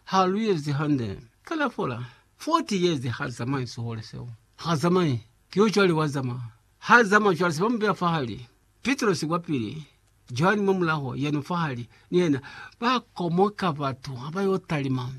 Ha lu yezi hande. Kana fola 40 years ha zamai sihole seo. Ha zamai. Ki yo cwale wa zama. Ha zama cwale se ba mu beya fahali. Pitrosi kwapili, Johani mwa mulaho, yeno fahali. Ni yena. Ba komoka batu ha ba yo talima.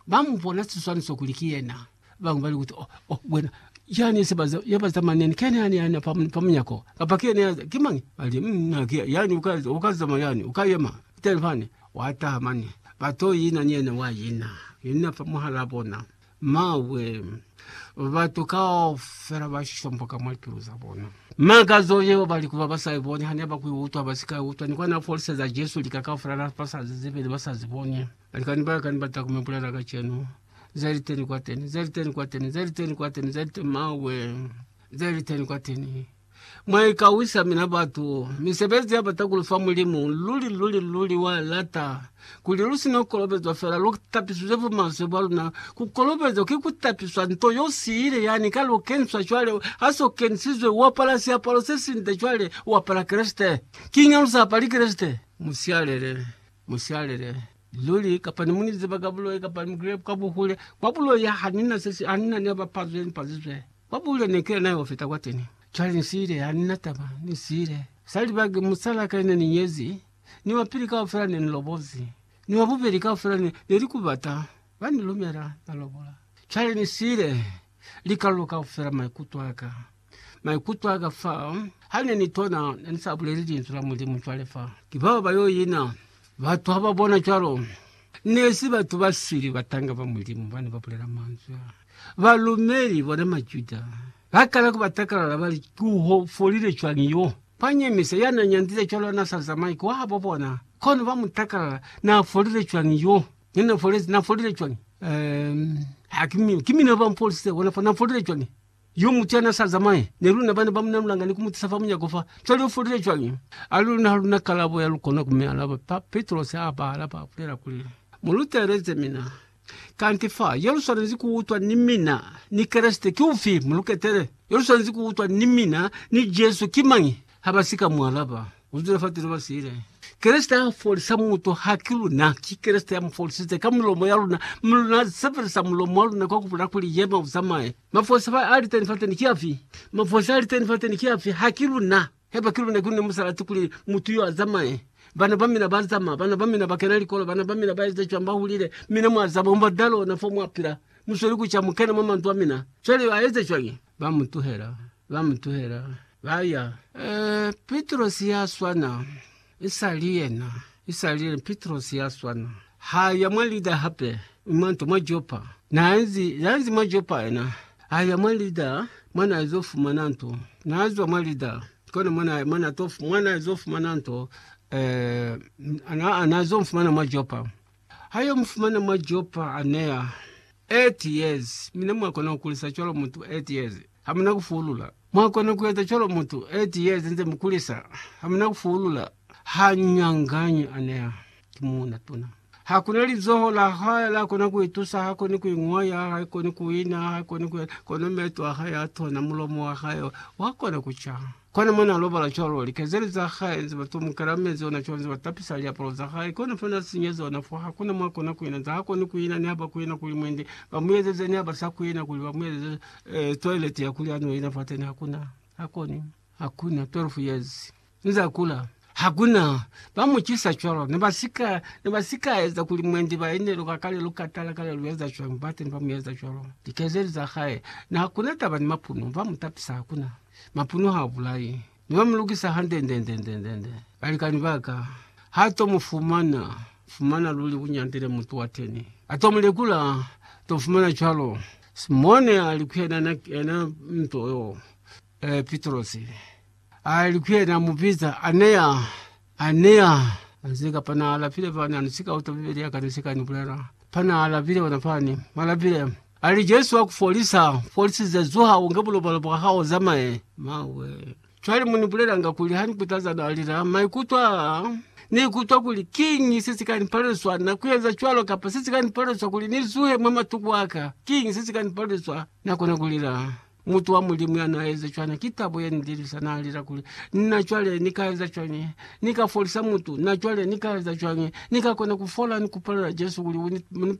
Ba mu bona siswaniso kuli ki yena. Babañwi bali kuti, Oh, oh, wena, yani yesebali yaba zamaneni, kene yani yani pa pa munyako, kapa kene ya ki mañi? Bali, mm, ha ki yani uka uka zama yani, uka yema teni fani. Wataha mane, ba to ina ni yena, wa ina ina fa muhala bona. Mawe, batu kaufela ba shomboka mwa pilu za bona. Makazo yeo bali kuba ba sa iboni, hane ba ku utwa, ba si ka utwa, ni kwa na foliseza Jesu lika kaufela na ba sa zizibeli, ba sa ziboni. Balikani baka ni bata kuma bulela kacenu. Zaliteni kwateni, zaliteni kwateni, zaliteni kwateni, zaliteni mawe, zaliteni kwateni. Mwaikawisa mina batu, misebezi ya bata kulufa mulimu, luli luli luli wa lata. Kuli lusino kolobezwa fela, lu tapisizwe bu maswe bwa luna. Kukolobezwa ki kutapiswa nto yo siile yani ka lu kenswa cwale, haso kensizwe, uapala siapalo sesinde cwale, uapala Kreste. Kiña lusapali Kreste? Musialele. Musialele luli, kapa ni muniziba ka buloi, kapa ni mukile kwa buhule. Kwa buloi ha, ha nina sesi, ha nina ne ba pazwe, ni pazizwe. Kwa buhule ne kile nayo fita kwa teni. Cwale ni siile, ha nina taba, ni siile. Sa libaki, musal'a ka ne ni nyezi, ni wa pili kaufela ne ni lobozi, ni wa bubeli kaufela ne, ne li kubata, ba ni lumela, na lobola. Cwale ni siile, likalolo kaufela, maikuto aka. Maikuto aka fa hane ni tona ne ni sa buleli linzwi la Mulimu cwale fa ki bao ba yo ina. Batu ha ba bona cwalo, ne si batu ba sili batanga ba Mulimu bane ba bulela manzwi a. Balumeli, bona Majuda, ba kala ku ba takalala ba li, Ki u folile cwañi yo? Ba nyemisa ya na nyandile cwalo na sa zamai kwa habo bona, kono ba mu takalala, Na folile cwañi yo? Ne na folezi, na folile cwañi? Um, ha ki mina, ki mina ba mfolisize bona fa, na folile cwañi? Yo mutu yana sa zamaye ni luna bana ba muna lulanga ni ku mutisa fa munyako fa. Cwale u folile cwañi? A luna ha luna kalabo ya lukona ku mi alaba. Pa Petrose a ba alaba, a bulela kuli, Mu luteleze mina. Kanti fa yo lu swanezi ku utwa ni mina ni Kreste ki ufi? Mu lu ketele. Yo lu swanezi ku utwa ni mina ni Jesu ki mañi? Ha ba si ka mu alaba, u zula fa tulo ba siile. Kreste ha folisa mutu, ha ki luna. Ki Kreste ya mu folisize ka milomo ya luna, mi luna sebelisa mulomo wa luna kwa ku bulela kuli, Yema, u zamaye. Mafosi ba a liteni fateni ki afi? Mafosi a liteni fateni ki afi? Ha ki luna. Haiba ki luna, ki luna mu sa lati kuli mutu yo a zamaye. Bana ba mina ba zama, bana ba mina ba kena likolo, bana ba mina ba eza cwani, ba hulile. Mina mwa zama ku ba dalo ona fo mwa pila. Mu sweli ku ca, mu kena mwa mandu a mina. Cwale yo a eza cwañi? Ba mu tuhela, ba mu tuhela, ba ya. Ee, Pitrosi ya swana. Isali yena, isali yena Pitrosi ya swana. Ha ya mwa Lida hape, mi mwa nto mwa Jopa. Na nzi, na nzi mwa Jopa yena, ha ya mwa Lida, mwa na ezo fumana nto. Na zwa mwa Lida, kona mwa na, mwa na to, mwa na ezo fumana nto, eh, na, na ezo mfumana mwa Jopa. Ha yo mufumana mwa Jopa, a neya 8 years. Mina mwa kona ku kulisa cwalo mutu 8 years, ha muna ku fuulula? Mwa kona ku eza cwalo mutu 8 years nze mu kulisa, ha muna ku fuulula? Ha nyanganyi, a neya. Ki muuna tuna. Ha kuna lizoho la hae la kona ku itusa, ha koni ku ingwaya, ha koni ku ina, ha koni ku, kono meto a hae a tona, mulomo wa hae wa kona ku ca. Kona mwana alobala cwalo, likezeli za hae nze batomukela mezi ona cwalo nze batapisa liapalo za hae, kona fo na sinyeza ona fo, hakuna mwa kona kuina nze ha koni kuina ni haba kuina kuli mwende ba muezeze ni haba sa kuina kuli ba muezeze eh, toilet ya kuli ano ina fateni hakuna, hakoni, hakuna 12 years nze akula hakuna ba mucisa cwalo ne basika ne basika eza kuli mwende ba inelo ka kale lukatala kale lueza cwalo bateni ba mueza cwalo likezeli za hae na hakuna taba ni mapuno ba mutapisa hakuna Mapuno ha bulai. Ni ba mulukisa hande-nde-nde-nde-nde-nde. Balikani ba ka, ha to mu fumana, fumana luli ku nyandile mutu wa teni. A to mu lekula, to fumana cwalo. Simone a li ku yena, Na yena mutu yo, eh, Pitrosi. A li ku yena, Mu biza, Aneya. A ne a anzeka pa n'a lapile fani, a ni si ka uta Bibele ya ka ni si ka ni bulela. Pa n'a lapile ona fani, m'a lapile, a li, Jesu wa ku folisa, folisize, zuha, u nge bulobalo bwa hao, u zamaye. Mawe! Cwale mu ni bulelanga kuli ha ni kutaza n'a lila, maikuto a ni ikutwa kuli, Kiñi se si ka ni palelisa na ku eza cwalo? Kapa se si ka ni palelisa kuli ni zuhe mwa matuku a ka? Kiñi se si ka ni palelisa na kona ku lila? Mutu wa Mulimu ya n'a eza cwana ki tabo ye ni lilisa. N'a lela kuli, Na cwale ni ka eza cwañi? Ni ka folisa mutu? Na cwale ni ka eza cwañi? Ni ka kona ku fola ni ku palela Jesu kuli u ni